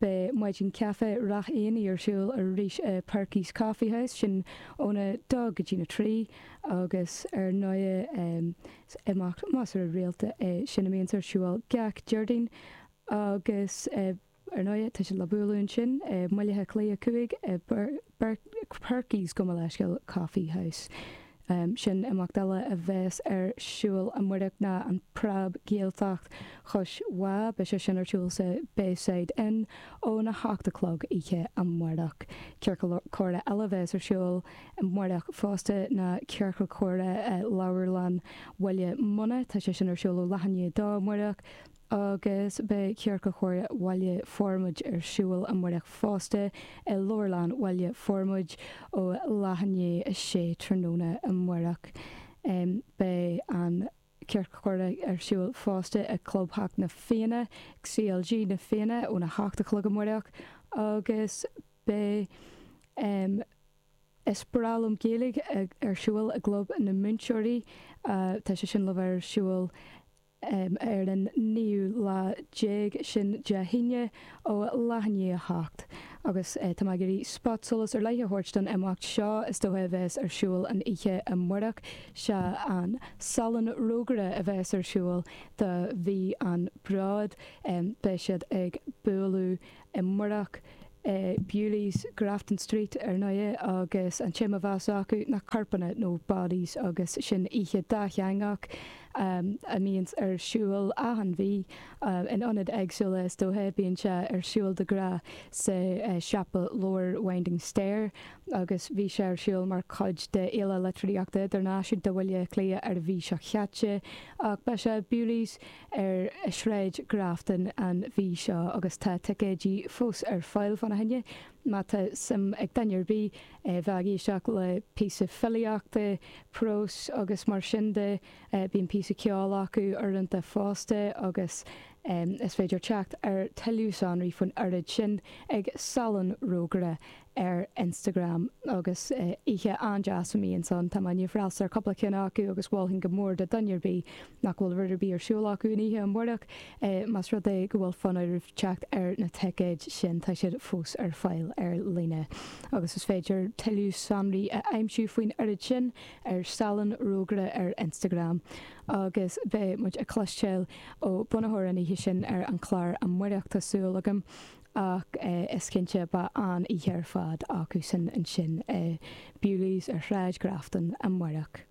Beidh maidin chaife Ráth Eanaigh ar siúl arís i Perky's Coffee House, sin óna dó go dtína trí, agus ar ndóigh is imeacht measartha rialta é sin a mbíonns ar siúl gach Déardaoin agus ar ndóigh tá siad le bualadh ansin i mBaile Átha Cliath 5 i bPerky's gabh mo leithscéal, Coffee House. Um sin imeacht eile a bheas ar siúl amárach ná an Preab-Ghaeltacht Chois Bhá. Beidh sé sin ar siúl sa Bayside Inn óna hocht a chlog oíche amárach. Ciorcal comhrá eile a bheas ar siúl amárach fosta ná ciorcal comhrá i Leabharlann Bhaile Munna. Tá sé sin ar siúl ó leath i ndiaidh a dó amárach. agus beidh Ciorcal Comhrá Bhaile Formaid ar siúl amárach fosta, i Leabharlann Bhaile Formaid, ó leath i ndiaidh a sé tráthnóna amárach. Beidh an Ciorcal Comhrá ar siúl fosta i gClubtheach na Fianna, CLG na Fianna, óna hocht a chlog amárach, agus beidh Is breá liom Gaeilge ar siúl i gClub na Múinteoirí, tá sé sin le bheith ar siúl, ar an naoú lá déag, sin Dé hAoine, ó leath i ndiaidh a hocht agus tá mé ag iarraidh spotsolas ar leith a thabhairt don imeacht seo is dócha a bheas ar siúl an oíche amárach, sea, an Salon Rógaire a bheas ar siúl do mhí an Bhróid, beidh siad ag bualadh amárach i Bewley's, Grafton Street, ar ndóighe, agus an téama a bheas acu ná corpanna, nó bodies, agus sin oíche dátheangach a mbíonns ar siúl achan mhí, in ionaid éagsúla, is dócha. Bíonn sé ar siúl de ghnáth sa siopa leabhar Winding Stair, agus bhí sé ar siúl mar chuid de Fhéile Litríochta Idirnáisiúnta Bhaile Átha Cliath ar an mhí seo chaite, ach beidh sé Bewley's, ar Shráid Grafton an mhí seo agus tá ticéidí fós ar fáil fá na choinne. Má tá suim ag duine ar bith a bheith ag éisteacht le píosa filíochta, próis agus mar sin de, bíonn píosa ceoil acu uaireanta fosta agus is féidir teacht ar tuilleadh sonraí faoin oiread sin ag Salon Rógaire ar Instagram agus oíche an-deas a mbíonns ann. Tá mé i ndiaidh freastal ar cúpla ceann acu agus mholfainn go mór do dhuine ar bith nach bhfuil rud ar bith ar siúl acu an oíche amárach, más rud é go bhfuil fonn oraibh teacht ar na ticéid sin, tá siad fós ar fáil ar líne. Agus is féidir tuilleadh sonraí a aimsiú faoin oiread sin ar Salon Rógaire ar Instagram. Agus beidh muid ag cloisteáil ó bunaitheoir an oíche sin ar an chlár amárach, tá súil agam. Ach is cinnte beidh an-oíche ar fad acusan ansin i Bewley's ar Shráid Grafton amáireach.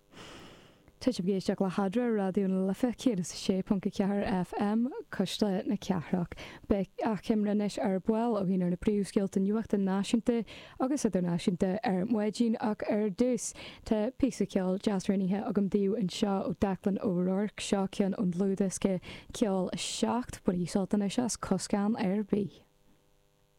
Tá sibh ag éisteacht le hEadra, Raidió na Life 106.4 FM, Cuisle na Cathrach. Beidh achoimre anois ar ball againn ar na príomhscéalta nuachta náisiúnta agus idirnáisiúnta ar maidin ach ar dtús tá píosa ceoil deas roghnaithe agam daoibh anseo ó Declan O'Rourke, seo ceann ón dlúthdhiosca Ceol 07, bainigí sult anois as Coscán ar Bith!